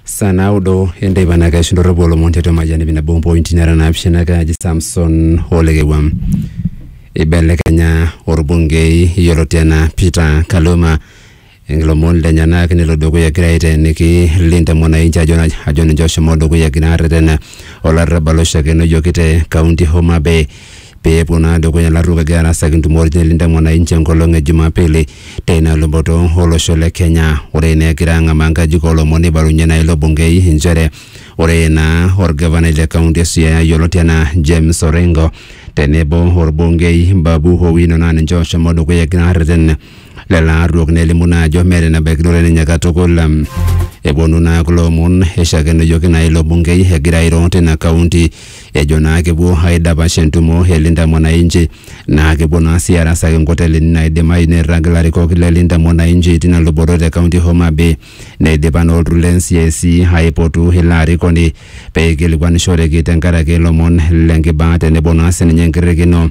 saa naudo enteipa naa keishu ndorropu olomon tiatua majani binabo mpointi nara naapishana kaji samson olekewam ibelekenya orbungei yioloti enaa peter kaluma ilomon lenyenak nelo dukuya egira aiteeniki Linda Mwananchi ajo naj- ajo ninche oshomo dukuya egira arretena olarrabal oishakenoyioki te kaunti Homa Bay pee epuo naa dukuya ilaturok egira arasaki ntumot nelinda mwananchi enkolong e Jumapili teina luboto olosho le Kenya. Ore naa egira ang'amaa nkajijik oolomon neibalunye naa ilo bungei inchere ore naa olgavanai le kaunti e Siaya yioloti anaa James Orengo tenebo olbungei Babu Owino naa ninche ooshomo dukuya egira aarreten lelo arruok nelimu naa ajo meeta enebaikinore ninye katukul. Eponu naa kulo omon eishakenoyioki naa ilo bungei egira airo tina kaunti ejo naa kepuo aidapash entumo e Linda Mwananchi naa kepuo naa sii arasaki inkotelini naidimayu neirrag ilarikok le Linda Mwananchi tina luboto te kaunti e Homa Bay. Neidipa naa olturrur le NCIC aipotu ilo arikoni pee eikilikuanishoreki tenkaraki ilomon le nkibaa tenebo naa sininye enkirrikino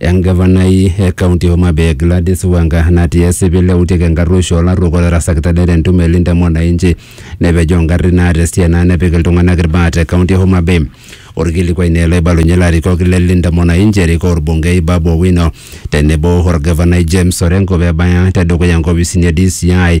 Engavanai e kaunti e Homa Bay Gladys Wanga natii esipil eutieki enkarruoisho olarruok otarasakita det entumo e Linda Mwananchi nepejoo ngarrin naata esiai naa nepik iltung'anak ilbaa te kaunti e Homa Bay. Olkilikuai naa ele oibalunye ilarikok le Linda Mwananchi erikoo olbungei Babu Owino tenebo olgavanai James Orengo pebaya tedukuya nkopisini e DCI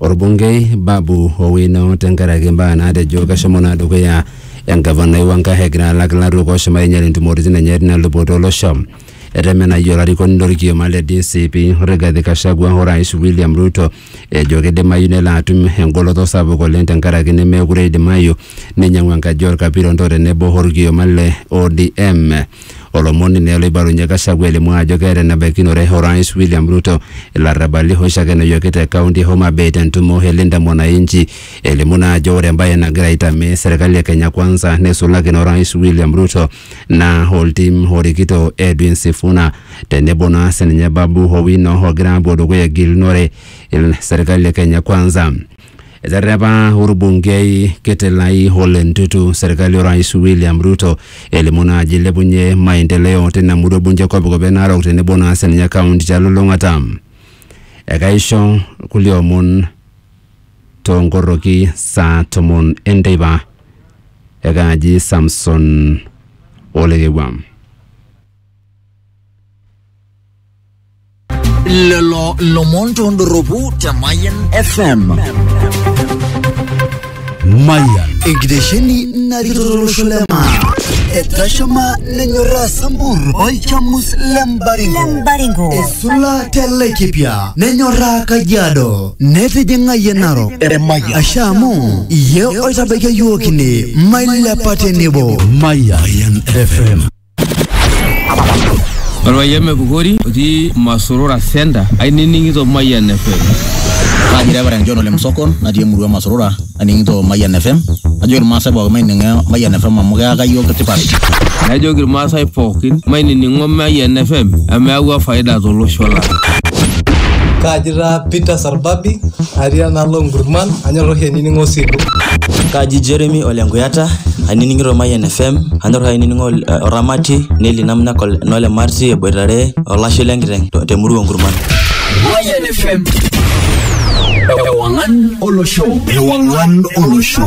orbungei Babu Owino tenkaraki imbaa naatejo keshomo naa dukuya engavanai Wangahe egira alak ilaruok ooshomo ainyal intumoritin enye tina luboto olosho. Etemenayie olarikoni lorkioma le DCP Rigathi Gachagua o Rais William Ruto ejo kidimayu nelo atum engoloto sapuk oleng tenkaraki nemeekure eidimayu neinyang'u enkaji olkapiron o tenebo olkioma le ODM. Olomoni naa oloibalunye Gachagua elimu ajo keeta enebaikinore Orais William Ruto ilarrabali hooshi ake enoyioki te kaunti e Homa Bay te ntumo e Linda Mwananchi elimu naa ajo ore embae nagira aitamee serkali e Kenya Kwanza neisulaki ina Orais William Ruto naa oltim orikito Edwin Sifuna tenebo naa sininye Babu Owino ogira apuo dukuya egilunore serkali e Kenya Kwanza. Eterrepa orbungei kiti Lai Ole Ntutu serkali orais William Ruto elimu naa ajo eilepunye maendeleo tina murua e bunge e Kopikop e Narok tenebo naa sininye kaunti telulung'ata. Ekaisho kulie omon toonkorroki saa tomon enteipa. Ekaaji Samson Olekewua. lelo lomon tondoropu te Mayan FM. Mayan. Egidesheni narikitolosho lema. Etashama nenyorra sambur olchamus lembaringo. Lembaringo. Esula telekipia nenyorra kajiado. Netijing'a yie narok. Emayian. Asha amu iye oitabaikia yiook ine mailepa tenebo. Mayan FM. Orpayian Mepukori otii Masurura Center ainining'ito Mayian FM. Kaji Reverend John Ole Msokon natii emurua Masurura aning'ito Mayian FM. Ajo irmaasai pookin maining'o Mayian FM amu keyaka iyiook tipat. Najoki irmaasai pookin mainining'o Mayian FM amu eyawua faida tolosho lang. Kaji taa Peter orbabi atii enaalo nkurman anyor oshi ainining'o osilu Kaji Jeremy ole Nkuyata, ainining'ito Mayian FM, anyor ainining'o ol- eh, Oramati, Neli Namnak ol- nole Marti eboitare olashe lenkiteng to- temurua Nkurman. Mayan FM. Ewangan Olosho. Ewangan Olosho.